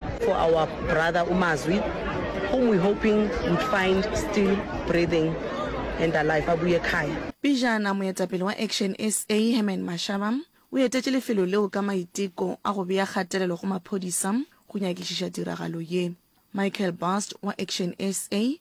For our brother uMazwi whom we hoping would find still breathing and alive a boye khaya. Pejana moetapele wa Action SA Herman Mashaba o etetše lefelo leo ka maiteko a go bea kgatelelo go maphodisa go nyakišiša tiragalo ye. Michael Bast wa Action SA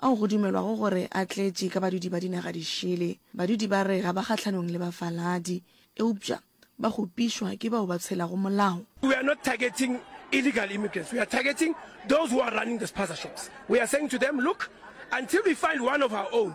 ao go dumelwago gore a tletše ka badudi ba dinaga di šele. Badudi ba re ga ba kgahlanong le bafaladi, eupša ba kgopišwa ke bao ba tshelago molao. We are not targeting illegal immigrants, we are targeting those who are running the spaza shops. We are saying to them, look, until we find one of our own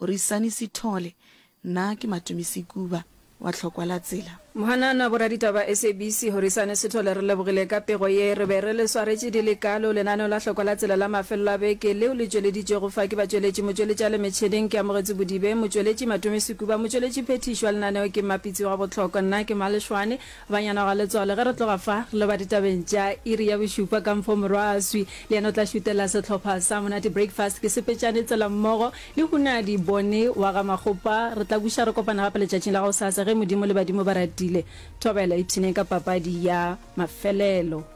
Rwisani Sithole, Nna ke Matumi Sekuba wa Tlhokwa la Tsela. Mohanana boraditaba SABC Horisane Sithole re lebogile ka pego ye re be re le swaretše di le kalo lenaneo la Hlokwa la Tsela la mafelelo a beke leo le tšweleditšwego fa ke batšweletši motšweletši a le metšheneng ke Amogetsi Bodibe motšweletši Matumi Sekuba motšweletši phethiši wa lenaneo ke Mmapitsi wa Bohlokwa nna ke Malešwane Banyana Galetswalo, ge re tloga fa, re lo ba ditabeng tša iri ya bošupa ka mfo Morwaaswi le yena o tla šutela sehlopha sa Monate Breakfast ke Sepetšane Tselammogo le Hunadi Bone wa ga Makgopa. Re tla buša re kopana gape letšatšing la gosasa ge Modimo le badimo ba ratile. Thobela, ipshineng ka papadi ya mafelelo.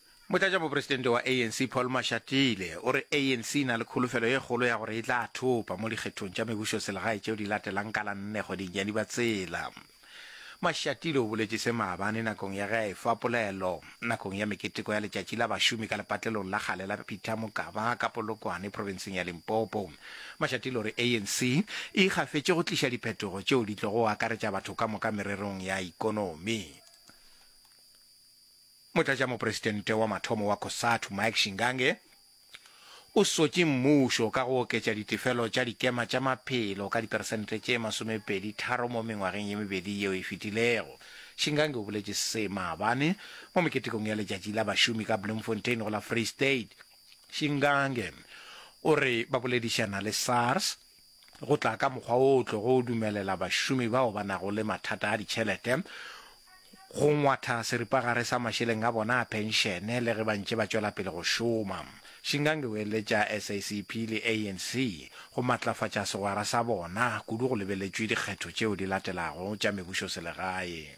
Motlatšamopresidente wa ANC Paul Mashatile o re ANC e na le kholofelo ye kgolo ya gore e tla thopa mo dikgethong tša mebušoselegae tšeo di latelang ka la nne kgweding ya Dibatsela. Mashatile o boletše se maabane nakong ya ge a efa polelo nakong ya meketeko ya letšatši la bašomi ka lepatlelong la kgale la Peter Mokaba ka Polokwane profenseng ya Limpopo. Mashatile o re ANC e ikgafetše go tliša diphetogo tšeo di tlogo akaretša batho ka moka mererong ya ikonomi. Motlatšamopresidente wa mathomo wa Cosatu, Mike Shingange, o swetše mmušo ka go oketša ditefelo tša dikema tša maphelo ka diperesente tše masomepedi tharo mo mengwageng ye mebedi yeo e fetilego. Shingange o boletše se maabane mo meketekong ya letšatši la bašomi ka Bloemfontein go la Free State. Shingange o re ba boledišana le SARS. go tla ka mokgwa wo o tlogo o dumelela bašomi bao ba nago le mathata a ditšhelete go ngwatha seripagare sa mašeleng a bona a phenšene le ge ba ntše ba tšwela pele go šoma. Shingange o eletša SACP le ANC go matlafatša segwera sa bona, kudu go lebeletšwe dikgetho tšeo di latelago tša mebušoselegae.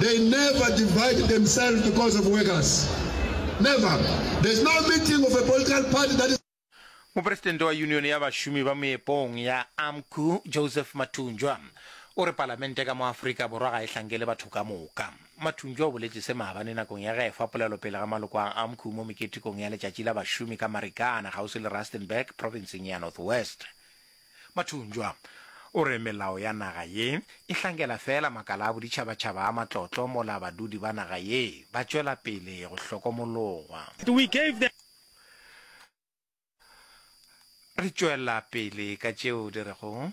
they never divide themselves because of workers never there's no meeting of a political party that is Mopresidente wa Union ya Bašomi ba Moepong ya Amcu, Joseph Mathunjwa, o re palamente ka mo Afrika Borwa ga e hlankele batho ka moka. Mathunjwa o boletše se maabane nakong ya ge a efa polelo pele ga maloko a Amcu mo meketekong ya letšatši la bašomi ka Marikana kgauswi le Rustenburg, provinseng ya North West. Mathunjwa o re melao ya naga ye e hlankela feela makala a boditšhabatšhaba a matlotlo mola badudi ba naga ye ba tšwela pele go hlokomologwa. Re tšwela pele ka tšeo di rego.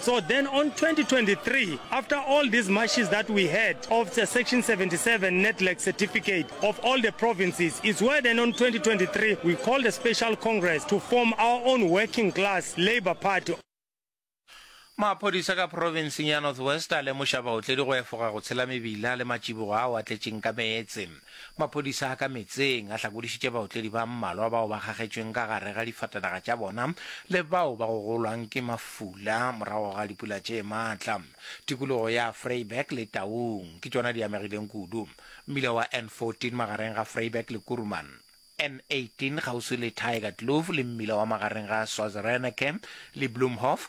So then on 2023, after all these mashes that we had of the section 77 NEDLAC certificate of all the provinces, it's where then on 2023 we called a special congress to form our own working class labour party. Maphodisa ka provinseng ya North West a lemoša baotledi go efoga go tshela mebila le matšibogo ao a tletšeng ka meetse. Maphodisa a ka metseng a hlakodišitše baotledi ba mmalwa bao ba kgagetšweng ka gare ga difatanaga tša bona le bao ba gogolwang ke mafula morago ga dipula tše matla. Tikologo ya Vryburg le Taung ke tšona di amegileng kudu. Mmila wa N14 magareng ga Vryburg le Kuruman, N18 kgauswi le Tygerkloof le mmila wa magareng ga Swazireneke le Bloemhof